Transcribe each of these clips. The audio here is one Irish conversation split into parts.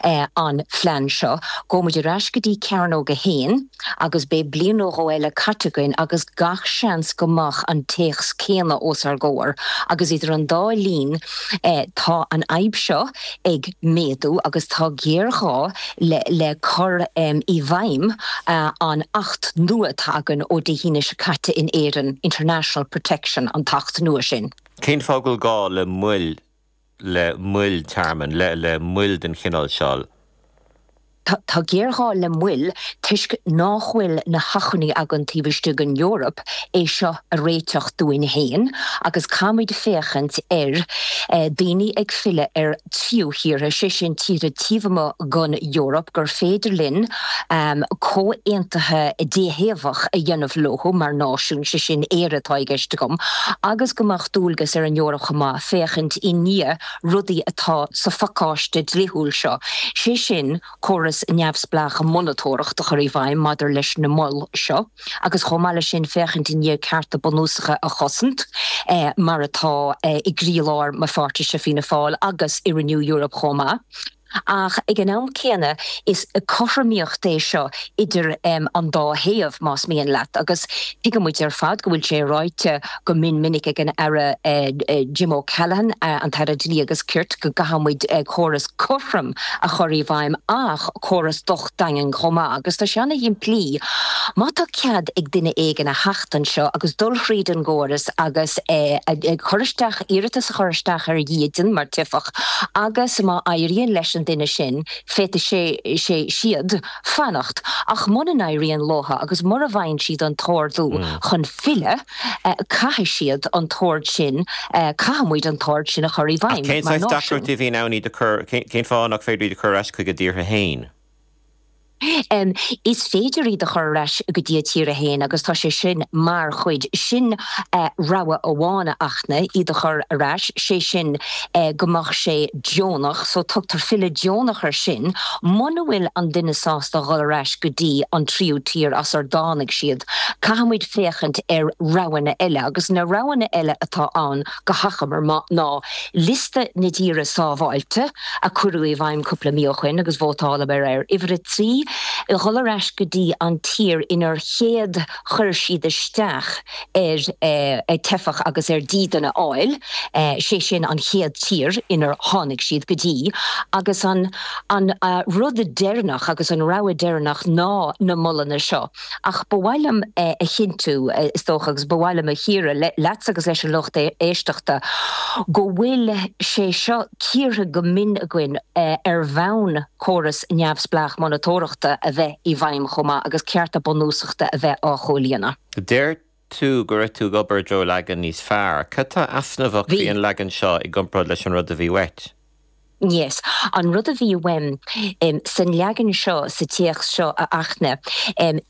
an phlean seo, gabhaimid ar ais go dtí Cearnóg 1 agus beidh bliain nó dhó eile caite againn agus gach seans go mbeadh an téacs céanna os ár gcomhair agus idir an dá linn tá an fhadhb seo ag méadú agus tá géarghá le cur i bhfeidhm an Acht nua atá againn ó Dé hAoine seo caite in Éirinn, International Protection an tAcht nua sin. Cén fáth go bhfuil gá le moill le moil tearmainn, le, le moil den chineál seo. Tá, tá géarghá le moil toisc nách bhfuil na hacmhainní againn taobh istigh den Eoraip é seo a réiteach dúinn féin agus caithfimid féachaint ar eh, daoine ag filleadh ar thríú thíortha, sé sin tíortha taobh amuigh den Eoraip gur féidir linn ehm, comhaontaithe déthaobhach a dhéanamh leo mar náisiún, sé sin Éire atá i gceist agam, agus go mbeadh dualgas ar an Eoraip chomh maith. féachaint i ndiaidh rudaí atá sa phacáiste dlíthiúil seo, sé sin córas neamhspleách monatóireachta a chur i bhfeidhm maidir leis na moil seo agus chomh maith leis sin féachaint i ndiaidh cearta bunúsacha a chosaint mar atá i gcroílár mo pháirtise Fianna Fáil agus i Renew Europe chomh maith. Ach ag an am céanna is cothromaíocht é seo idir an dá thaobh, más mian leat, agus tuigimid ar fad go bhfuil sé ráite go mion minic ag an Aire Jim O Callaghan, an tAire Dlí agus Cirt, go gcaithfimid córas cothrom a chur i bhfeidhm ach córas daingean chomh maith agus tá sé an-shimplí. Má tá cead ag duine éigin a theacht anseo agus dul thríd an gcóras agus cur isteach, iarratas a chur isteach ar dhídean mar theifeach agus má éiríonn leis an duine sin féadfaidh sé, sé, siad fanacht ach muna n-éiríonn leo agus mura bhfaigheann siad an t-ordú chun filleadh, Caithfidh siad an t-ord sin, caithfimid an t-ord sin a chur i bhfeidhm mar náisiún. Ach cén saghas deacrachtaí a bhíonn ann iad a chur, cén fáth nach féidir iad a chur ar ais chuig a dtíortha fhéin? Is féidir iad a chur ar ais go dtí a dtíortha fhéin agus tá sé sin mar chuid, sin rogha amháin a Fhachtna, iad a chur ar ais, sé sin go mbeadh sé deonach so tugtar filleadh deonach ar sin muna bhfuil an duine sásta a dhul ar ais go dtí an tríú tír as a dtáinig siad. Caithfimid. féachaint ar roghanna eile agus na roghanna eile atá ann go hachomair ná liosta na dtíortha sábháilte a cuireadh i bhfeidhm cúpla mí ó shoin agus vótáladh air, ar uimhir a trí, dhul ar ais go dtí an tír inar chéad chuir siad isteach ar theifeach agus ar dhídean a fháil, sé sin an chéad tír inar tháinig siad go dtí agus an rud deireannach agus an rogha deireannach ná na molanna seo. Ach ba mhaith liom a chinntiú, is dócha, agus ba mhaith liom a chíoradh, leatsa agus leis an lucht éisteachta, go bhfuil sé seo cíortha go mion againn ar bhonn córas neamhspleách monatóireachta a bheith i bhfeidhm chomh maith agus cearta bunúsachta a bheith á chomhlíonadh. Deir tú go raibh tú ag obair i dtreo leagan níos fearr. Cad tá easnamhach faoin leagan seo i gcomparáid leis an rud a bhí uait? Yes. An rud a bhí uaim san leagan seo, sa téacs seo, a Fhachtna,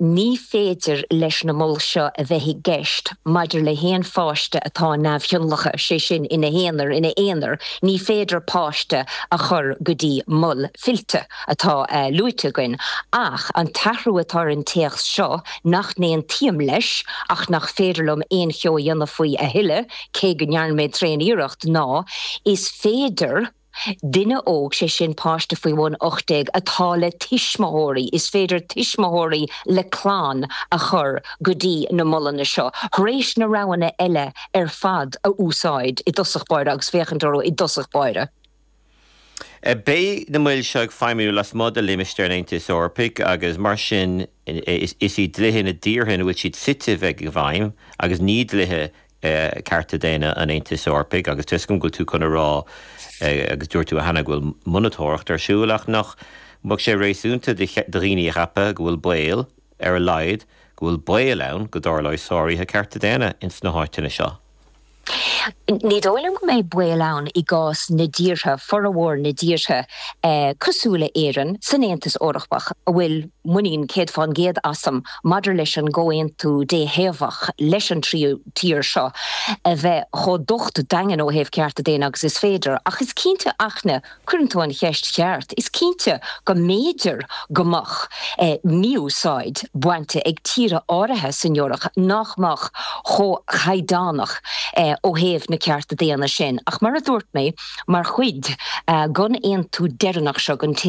ní féidir leis na moil seo a bheith i gceist maidir le haon pháiste atá neamhthionlactha, sé sin, ina haonar, ina aonar, ní féidir páiste a chur go dtí mol fillte. atá luaite againn, ach an t-athrú atá ar an téacs seo nach n-aontaím leis ach nach féidir liom aon cheo a dhéanamh faoi a thuilleadh, cé go ndearna mé tréan-iarracht, ná, is féidir duine óg, sé sin páiste faoi bhun 18, atá le tuismitheoirí, is féidir tuismitheoirí le clann a chur go dtí na molanna seo tar éis na roghanna eile ar fad a úsáid i dtosach báire agus féachaint orthu i dtosach báire. Beidh na moil seo ag feidhmiú lasmuigh de limistéar an Aontais Eorpaigh agus mar sin is iad dlíthe na dtíortha ina bhfuil siad suite a bheidh i bhfeidhm agus ní dlíthe cearta daonna an Aontais Eorpaigh agus tá 'fhios agam go bhfuil tú chun a rá agus dúirt tú cheana go bhfuil monatóireacht ar siúl ach nach mbeadh sé réasúnta do dhaoine a cheapadh go bhfuil baol, ar a laghad, go bhfuil baol ann go dtarlóidh sáruithe cearta daonna ins na háiteanna seo. Ní dóigh liom go mbeidh baol ann i gcás na dtíortha, formhór na dtíortha cosúil le hÉirinn, san Aontas Eorpach a bhfuil muinín céad faoin gcéad asam maidir leis an gcomhaontú déthaobhach leis an tríú tír seo a bheith chomh docht daingean ó thaobh cearta daonna agus is féidir. Ach is cinnte, a Fhachtna. Cuireann tú an cheist cheart. Is cinnte go mb'fhéidir go mbeadh mí-úsáid bainte ag tíortha áirithe san Eoraip nach mbeadh chomh caighdeánach ó thaobh na cearta daonna sin. Ach mar a dúirt mé, mar chuid den aontú deireanach seo den